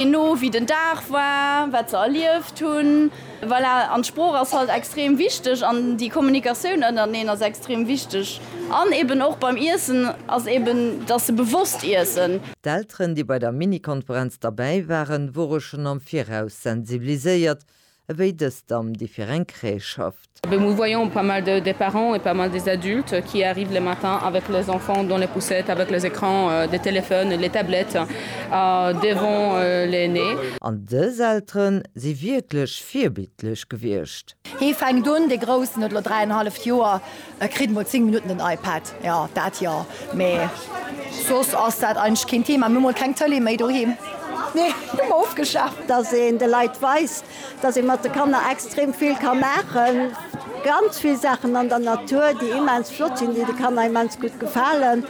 Je no wéi den Dag war, wat se erlieft hunn, voilà. An d'Sprooch ass halt extrem wichteg an déi Kommunikatioun ënnerteneen ass extrem wichteg. An eben och beim Iessen ass eben, dass se bewosst iessen. D'Elteren, déi bei der Mini-Konferenz derbäi waren, wore schonn am Viraus sensibiliséiert, Ewéi dëst am Differencré schafft. Nous voyons pas mal de des parents et pas mal des adultes qui arrivent le matin avec les enfants dans les poussettes avec les écrans des téléphones, les tablettes devant les nez. An dës Elteren si wierklech virbildlech gewiescht. Hee fänkt un, dee Groussen huet elo dräi an e halleft Joer, E kritt mol 10 Minutten den iPad, jo dat jo, mee soss ass dat eigentlech keen Thema. Mir hu mol keng Tëlee méi doheem, nee, hu mer ofgeschaaft. Dass een de Leit weist, dass ee mat de Kanner extrem vill ka maachen, ganz vill Saachen an der Natur, déi immens flott sinn, déi de Kanner immens gutt gefalen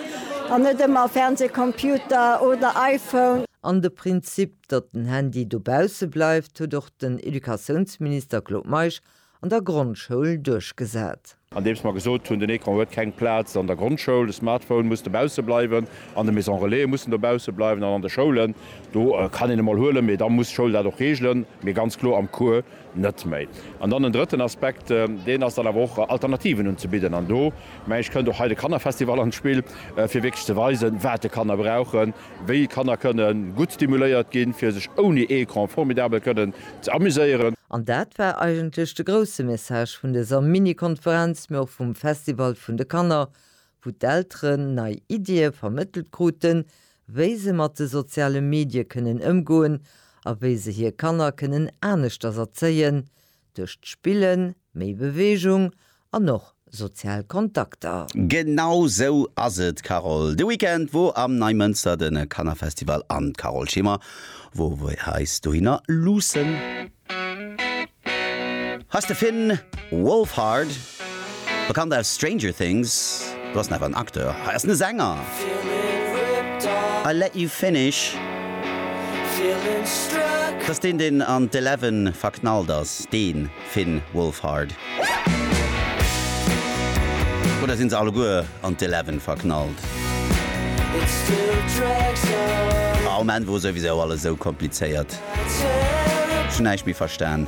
an net ëmmer Fernseh, Computer oder iPhone. An de Prinzip, datt den Handy dobausse bleift, huet och den Educatiounsminister Claude Meisch an der Grondschoul duerchgesat. Andeems mer gesot hunn, den Ecran huet keng Plaz an der Grondschoul, de Smartphone muss dobausse bleiwen an de Maison Relaie mussen dobausse bleiwen an an de Schoulen, do kann een e mol huelen, mee da muss d'Schoul dat och regelen, mee ganz kloer am Cours net méi. An dann en drëtten Aspekt, deen ass dann awer och, Alternativen unzebidden. An do, meng ech, kënnt och hei de Kannerfestival an d'Spill, fir wierklech ze weisen, wat de Kanner brauchen. Wéi Kanner kënnen gutt stimuléiert ginn, fir sech ouni Ecran formidabel kënnen ze amuséieren. An dat war eigentlech de grousse Message vun dëser Mini-Konferenz, mee och vum Festival vun de Kanner, wou d'Elteren nei Iddie vermëttelt kruten, wéi se mat de soziale Medie kënnen ëmgoen a wéi se hir Kanner kënnen aneschters erzéien, Duerch d'Spillen méi Beweegung an och sozial Kontakter. Genau sou ass et Carole. De Weekend wor am Neimënster den Kannerfestival an d'Carole Schimmer wor wei eis dohinner luussen. Hei ass de Finn Wolfhard. Bekannt aus Stranger Things, do ass en awer en Acteur, hei ass en e Sänger! I let you finish. T'ass deen, deen an d'Eleven verknallt ass, dee Finn Wolfhard. Oder sinn se alleguer an d'Eleven verknallt? Ah, um Enn wor souwisou alles esou komplizéiert, ech hunn näischt méi verstan.